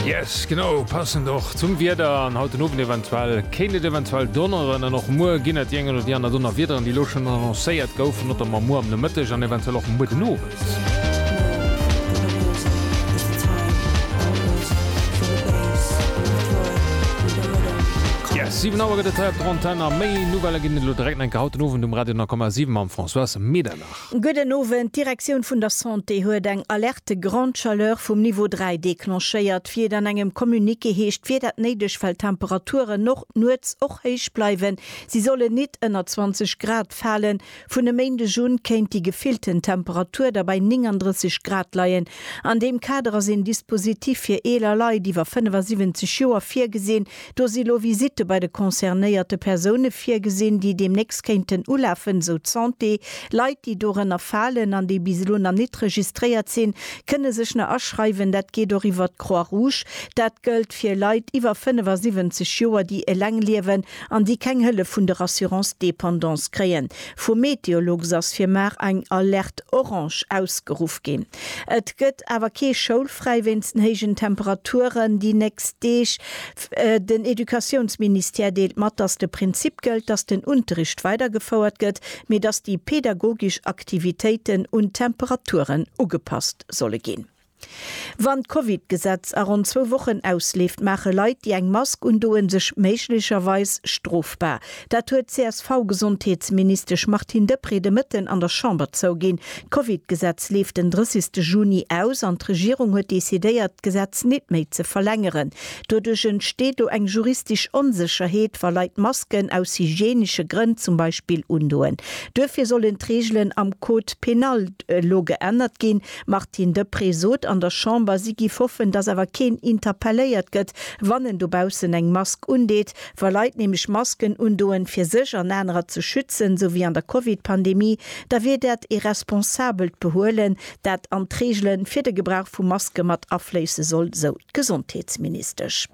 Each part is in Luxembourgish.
Yes, genau, passend och zum Wieder an haut den Owend eventuell kéint et eventuell donneren an och muer ginn et déi eng oder déi aner Donnerwiederen, déi elo schonn annoncéiert goufen, notamment muer am Nomëtteg an eventuell och muer den Owend. Yes, 7 Auer gëtt et hei op der Antenn a méi Nouvellë ginn et elo direkt eng Kéier haut den Owend um Radio 9,7 mam Françoise Medernach. Gudden Owend, d'Direktioun vun der Santé huet eng Alerte grande chaleur vum Niveau 3 declenchéiert, wéi et an engem Communiqué heescht, wier dat néideg, well d'Temperaturen och nuets och héich bleiwen. Si sollen nit ënner 20 Grad falen. Vun e Méindeg un kéint déi gefillten Temperatur da bei 39 Grad leien. An deem Kader ass een Dispositif fir eeler Leit iwwer 75 Joer virgesinn, Do si lo Visitte bei de concernéierte Persoune virgesinn, déi deemnächst kéinten ulafen, esou d'Santé. Leit, déi dorënner falen an déi bis elo nach nit registréiert sinn, kënne sech nach aschreiwen. Dat geet och iwwert d'Croix Rouge. Dat gëllt fir Leit iwwer 75 Joer, déi eleng liewen an déi keng Hëllef vun der Assurance dépendance kréien. Vum Meteolux ass fir mar eng Alerte orange ausgeruff ginn. Et gëtt awer kee schoulfräi wéinst den héijen Temperaturen déi nächst Deeg. Den Educatiounsministère deelt mat, datt de Prinzip gëllt, datt den Unterricht weidergefouert gëtt, mee datt déi pedagogesch Aktivitéiten un d'Temperaturen ugepasst solle ginn. Wann d'Covid-Gesetz a ronn zwou Wochen ausleeft, maache Leit, déi eng Mask undoen, sech méiglecherweis strofbar. Dat huet d'CSV-Gesondheetsministesch Martine Deprez de Mëtten an der Chamber zouginn. D'Covid-Gesetz leeft den 30 ste Juni aus an d'Regierung huet decidéiert, d'Gesetz nit méi ze verlängeren. Doduerch entsteet lo eng juristisch Onsécherheet, wa Leit Masken aus hygienische Grënn zum Beispill undoen. Duerfir sollen d'Regelen am Code pénal elo geännert ginn. D'Martine Deprez sot an der Chamber, si giff hoffen, dass awer keen interpelléiert gëtt, wann en dobaussen eng Mask undeet, Wa Leit nämlech Masken undoen, fir sech an anerer ze schützen, sou wéi an der Covid-Pandemie, da wier dat ee responsabelt Behuelen, dat an d'Reegele fir de Gebrauch vu Maske mat afléisse soll, sou d'Gesondheetsministesch.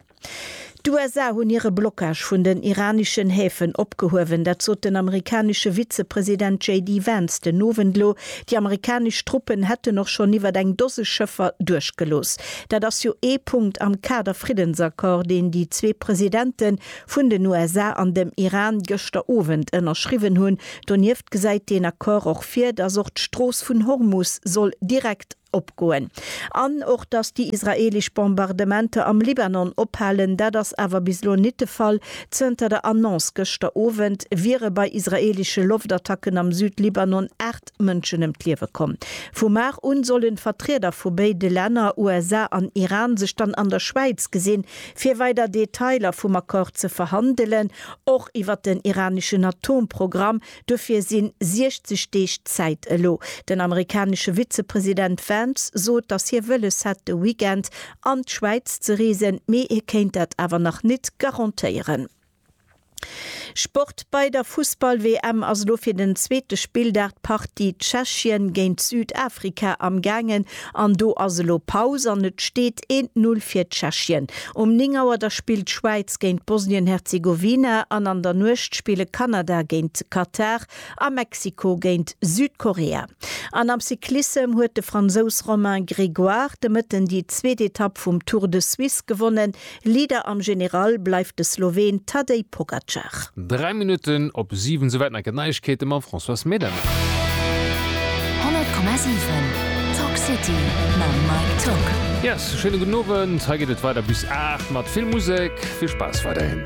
D'USA hunn hire Blockage vun den iraneschen Häfen opgehuewen. Dat sot den amerikanesche Vizepresident JD Vance den Owend elo. Déi amerikanesch Truppen hätten och schonn iwwert eng Dose Schëffer duerchgelooss. Dat ass jo ee Punkt am Kader Friddensaccord, deen déi zwee Presidente vun den USA an dem Iran gëschter Owend ënnerschriwwen hunn. Donieft gesäit deen Accord och vir, dass och d'Strooss vun Hormus soll direkt opgoen. An och, dass déi israeelesch Bombardementer am Libanon ophalen. Dat ass awer bis elo nit de Fall. Zënter der Annonce gëschter Owend wiere bei israeelesche Loftattacken am Südlibanon 8. 8 Mënschen ëm d'Liewe komm. Vu mar un sollen Vertrieder vu béide Länner, USA an Iran, sech dann an der Schwäiz gesinn, fir weider Detailer vum Accord ze verhandelen, och iwwer den iraneschen Atomprogramm. Dofir si 60 Deeg Zäit elo. Den amerikanesche Vizepresident Vance sot, datt hie wëlles hätt de Weekend an d'Schwäiz ze reesen, mee hie kéint dat awer nach net garantéieren. Sport, Bei der Fussball-WM ass elo fir den zweete Spilldag d'Partie Tschechien géint Südafrika am gaangen an do ass elo Paus an et steet een Null fir Tschechien. Um 9 Auer da spillt d'Schwäiz géint Bosnien-Herzegowina an an der Nuecht spille Kanada géint Katar a Mexiko géint Südkorea. An am Cyclissem huet de Fransous Romain Grégoire de Mëtten déi zweet Etapp vum Tour de Suisse gewonnen. Leader am General bleift de Sloween Tadej Pogacar. Dräi Minutten op siwen, souwäit nach gëtt Neiegkeete mam Françoise Medem. 100,7 Talk City mam Mike Tock. Yes, schéine gudden Owend. Hei geet et weider bis 8 mat vill Musek. Vill Spaass weiderhin.